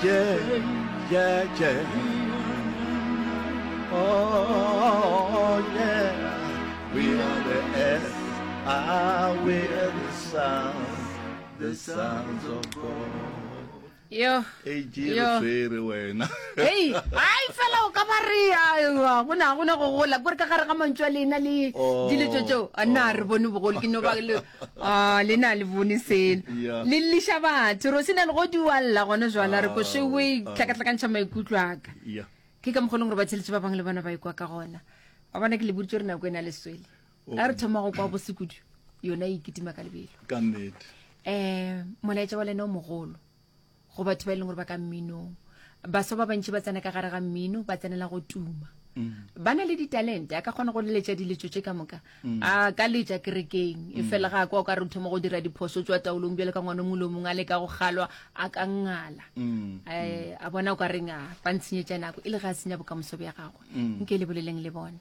tše tše tše oh yeah we are the earth ah we are the sound the sounds of god yo yo tsere wena hey ai fela o ka ba re ya go na go ne go gola gore ka gare ga mantšwa lena le oh. diletso tseo a na re bone bogolo ke no ba le Ah, le na le bone selo Yeah. le lliša batho ro se na le go dualla gone jala re ko shewe Ah. tlhakatlhakantšha maikutlo aka Yeah. ke ka mokgolong gore ba tsheletse ba bangwe le bona ba ikwa ka gona a bona ke le boditse gore nako e na le swele Oh. a re thoma go kwa bosekudu yona e kitima ka lebelo ka nnete um molaetša wa lena o mogolo go batho ba e leng gore ba ka mminong baswa ba bantši ba tsena ka gare ga mmino ba tsenela go tuma mm. ba na le ditalente a ka kgona go leletša diletso tše ka moka mm. a ka letša kerekeng e mm. fela ga kwa o ka re thoma go dira diphoso tswa taolong bjale ka ngwane mongwe le mongwe a le ka go kgalwa a ka ngala um a bona o ka reng a ba ntshenyetša nako e le ga a senya bokamoso bja gagwe nke le boleleng le bone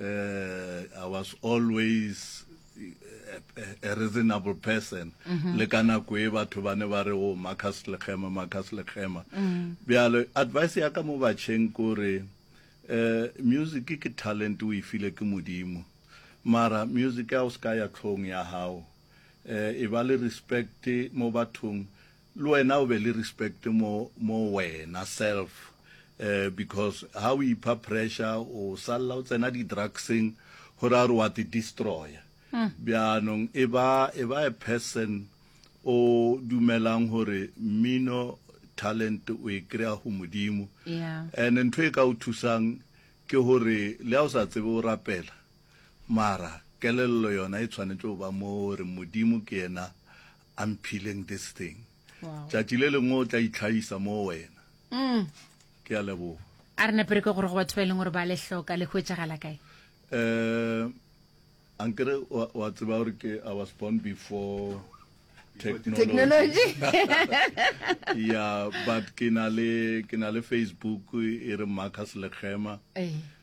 uh, I was always a, a, a reasonable person mm -hmm. le ka nako e batho ba ne ba re o oh, Marcus Lekgema Marcus Lekgema mm. bjale advice ya ka mo batšheng kore uh, music ke talent o e file ke modimo mara music ya o se ka ya tlhong ya gago uh, e ba le respect mo bathong Le wena o be le respect mo mo wena self eh because ha o ipha pressure o salla o tsena di drugseng go ra gore wa te destroya. Bjaanong e ba e ba a person o dumelang gore mmino talent o e kry-a go Modimo. Yeah. And ntho e ka o thusang ke gore le ha o sa tsebe o rapela mara kelello yona e tshwanetse go ba mo gore Modimo ke yena I'm peeling this thing. Wow. Tšatši le lengwe o tla itlhaisa mo wena. Mm. Ke a leboga. A re nepere ke gore go batho ba e leng gore ba le hloka le hwetšagala kae? Eh ankere wa tseba gore ke I was born before technology yeah but ke na le ke na le facebook e re marcus lekgema eh.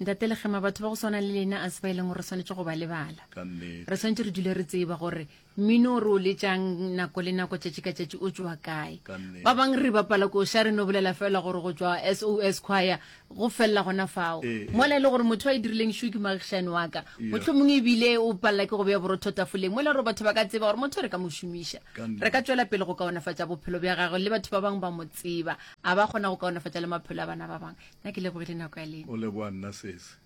Ntate Legema, batho ba go swana le lena a se ba e leng gore re swanetse go ba lebala. Re swanetse re dule re tseba gore mmino o re o letšang nako le nako tšatši ka tšatši o tšwa kae. Ba bang re bapala ko sha re no bolela fela gore go tšwa SOS Choir go felela gona fao. Mola e le gore motho a e dirileng shu ke moagišani wa ka. Mohlomongwe ebile o palela ke go beya borotho tafoleng mola gore batho ba ka tseba gore motho re ka mo šomiša. Re ka tšwela pele go kaonafatša bophelo bja gagwe le batho ba bangwe ba mo tseba, a ba kgona go kaonafatša le maphelo a bana ba bangwe. Na ke lebogile nako ya lena. O leboa nna sese.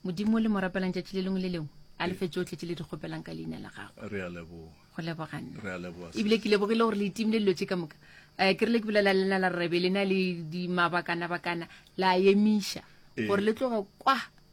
Modimo le mo rapelang tšatši le lengwe le lengwe a lefe tsotlhe tše le di kgopelang ka leina la gagwe re a leboga go leboga nna re a leboga ebile ke lebogile gore le itimile dilo tše ka moka um ke re le ke bolela lena la rebe lena le dimabakana bakana la emiša gore le tloge kwa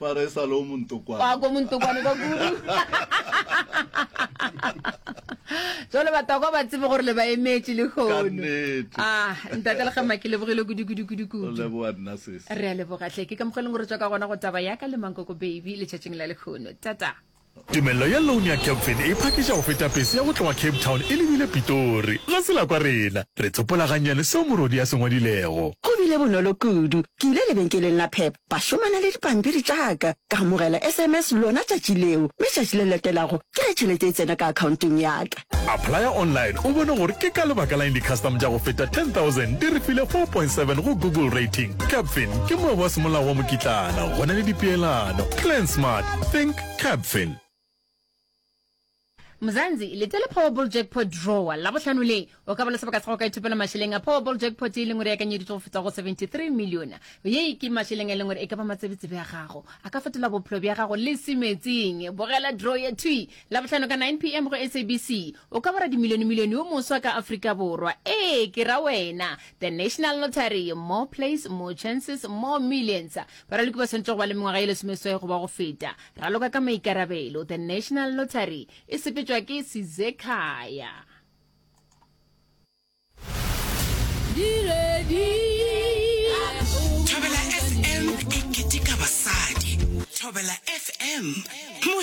Ba re e sa le o montokwane. Wa ko montokwane ka kudu. Jwale batokwa ba tsebe gore le ba emetše le hono. Ah, ntate le gema ke lebogile kudu kudu kudu kudu. Leboa nna sesi. Re a leboga tle ke ka mogeleng gore tswa ka gona go taba ya ka le mankoko baby le tšatšing la le hono. Tata. Tumello ya loan ya Capfin e phakiša go feta pese ya go tloga Cape Town e lebile Pitori. Ga se la kwa rena. Re tsopola gannyane seo morwedi a se ngwadilego. Go bile bonolo kudu. Ke ile lebenkeleng la Pep, ba šomana le dipampiri tša ka. Ka amogela SMS lona tšatši leo, mme tšatši le latelago ke ge tšhelete e tsena ka akhaonteng ya ka. Applya online o bone gore ke ka lebaka la eng di-custom tša go feta 10000 di re file 4.7 go Google Rating. Capfin ke moabo wa semolao wa mokitlana go na le dipeelano. Plan smart, think Capfin. Mzansi, lete la Powerball Jackpot Draw la bohlano le, o ka ba le sebaka sa go ka ithopela mašeleng a Powerball Jackpot e leng gore e akanyeditšwe go feta go 73 million. Ye ke mašeleng a e leng gore e ka ba matsebetsebe a gago, a ka fetola bophelo bja gago le se meetseng. Bogela draw ye thwi Labohlano ka 9 pm go SABC. O ka ba radimilionemilione yo moswa ka Afrika Borwa. Ee, ke ra wena. The National Lottery, more plays, more chances, more millions. Baraloki ba swanetše go ba le mengwaga ye lesomeswai goba go feta. Raloka ka maikarabelo. The National Lottery e sepetšwa ke Sizekhaya. Thobela FM e keteka basadi. Thobela FM.